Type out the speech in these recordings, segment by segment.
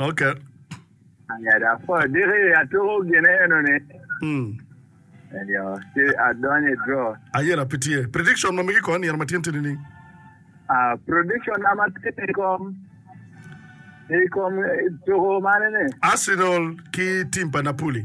Okay. Aya dok po adiki atuko gine eno ni. Mm. Ayo, ci adonyo i draw. Ayena pi tye. Prediction ma migi kor nino ma tyen tini ni. Ah, prediction na ma tye i kom i kom tuko mane ni? Arsenal ki team pa Napoli.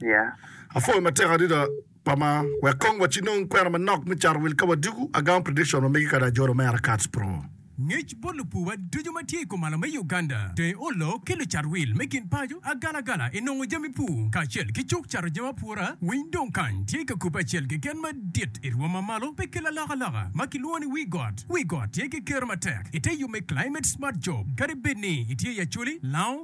Yeah. Apwoyo matek adida pama wek kong wa ci nong kwena manok me cato wil ka wadiko agamo prediction wa megi kadi ajolo me Aracats pro. Ngec bot lupuwa ducu ma tye i komalo me Uganda dong oloo ki lucat wil me kin paco agalagala inongo jami pur kacel ki cuk cato jami apura winy dong kany tye ka kubbe acel keken madit irwom ma malo pe ki lalokaloka ma kilwongo ni wii got wii got tye ki kero matek ite yub me climate smart job kadi bed ni itye i acholi lango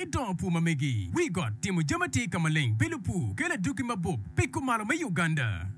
I dongo pur ma megi, wi got, timo jami atir ka maleng, bilo pur, kelo adwogi mabup, piko malo me Uganda.